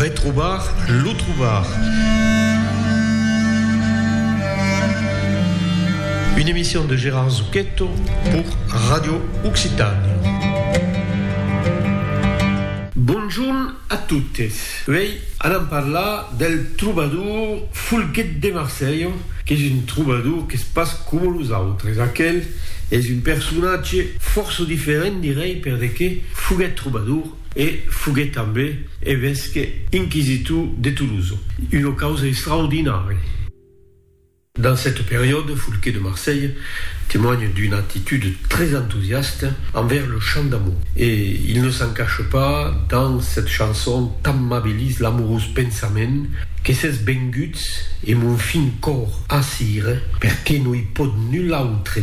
Retrobar lo trobar. Une emission de Gérard Zucchetto pour Radio Occitània. Bonjorn a totes. Uèi anam parlar del trobador Folguet de Marselha, qu'es un trobador qu'es pas coma los autres. Aquel es un personatge fòrça diferent, dirèi, perdeque foguèt trobador, e foguèt tanben evesque inquisitor de Tolosa, una causa extraordinària. Dans cette période, Foulquet de Marseille témoigne d'une attitude très enthousiaste envers le chant d'amour e il ne s'en cache pas dans cette chanson t'amabilis l'amorós pensament que s'es venguts e mon fin còr a cire perqué no i pòt nul autre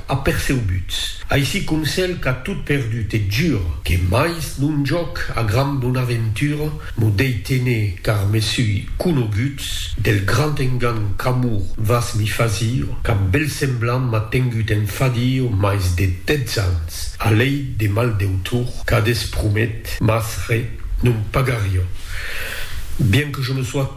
aperceubuts, aicí com cèl qu'a tot perdut e jur que mais non jòc a gran bonaventura m'o dei tener car me sui conoguts del grand engan qu'amor vas mi fazir cap bel semblant m'a tengut en fadir mais de dètz ans a lei de mal deutor qu'a despromet mas re non pagarion bien que je me sois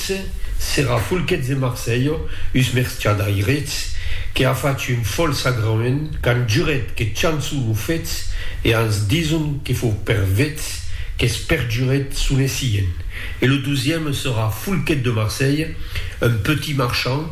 Esse s'era Fulquets e Marselho, us merciadaires, que a fach un fol sagrament qu'an juret que chançon o fets e ans dison que fou per vets qu'es perjuret sonessien. E lo dosième s'era Fulquet de Marselhe, un petit marchand,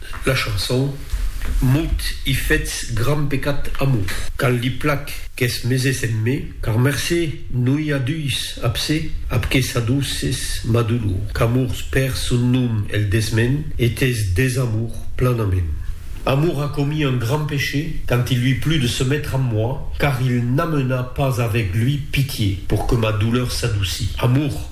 La chanson, Mot i fetz gran pecat amor. Cal li plac qu'es meses en me, car mercé noi a dus, ab se, ab que s'adouces ma dolor, qu'amors per son nom el desmen e t'es desamor planament. Amor a commis un gran péché quand il lui plut de se mettre amb moi, car il n'amena pas avec lui pitié pour que ma douleur s'adouci. Amor!